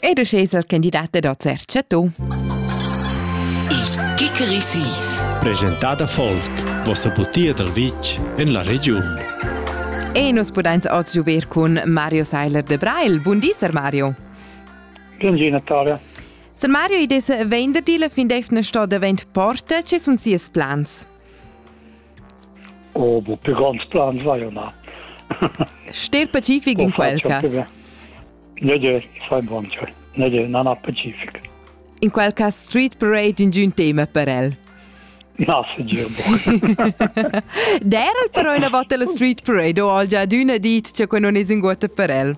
Ed uschè es il candidat da Zercha tu. Il Kikerisis. Presentada Folk, vossa butia dal vitg en la regiun. E nus pudains oz giuver cun Mario Seiler de Brail. Bun di, Sir Mario. Bun di, Natalia. Sir Mario, i des venderdi la fin d'efna sto davent porta, ce sun sias plans? Oh, bo per grands plans vaia na. Ster pacific in quel cas? Nede, fai buon ciò. Nede, non ha pacific. In quel cas street parade in giun tema per el. Na, se girbo. Dera però una volta la street parade o ho già adüna dit che quel non es in guota per el.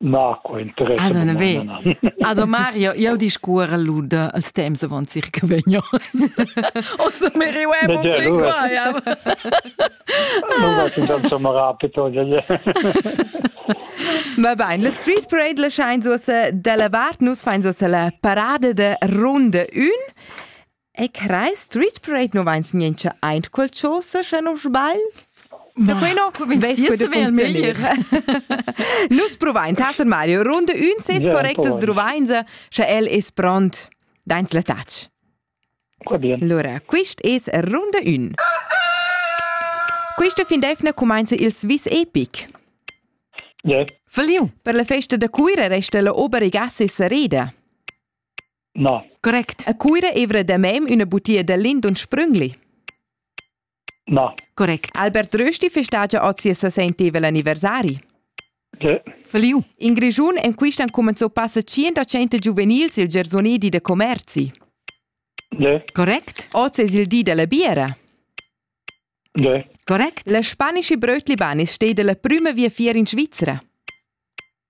Na, co interess. Also, na ve. Also Mario, io discuore luda als temps avant circa vegno. Ossa mi riuemo pli qua, ja. Non va in tanto rapido, ja, ja. Va bene, la Street Parade la schein so se della vart, nus fein so se la parade de runde 1 E crai Street Parade nu vains niencha aint quel chose, sche non sbagl? Da quei no veis veil meglier. Nus provains haser Mario runde ün ses correctas druvains, sche el es pront dains la touch. Qua bien. Allora, quist es runde ün. Quista fin defna cumainza il Swiss Epic. Yeah. Verliu. Per la festa da Cuira resta la obere gas e sareda. Na. Correct. A Cuira evra da mem üna butia da Lindon Sprüngli. Na. Correct. Albert Rösti festagia oz ses sessentevel anniversari. Sì. Feliu. In Grigiun en quist an cumenzò passa 100 giuvenils il Gersonedi de Commerzi. Sì. Correct. Oz es il di della biera. Sì. Correct. La spanische Brötli Banis steht la prima via fier in Svizzera.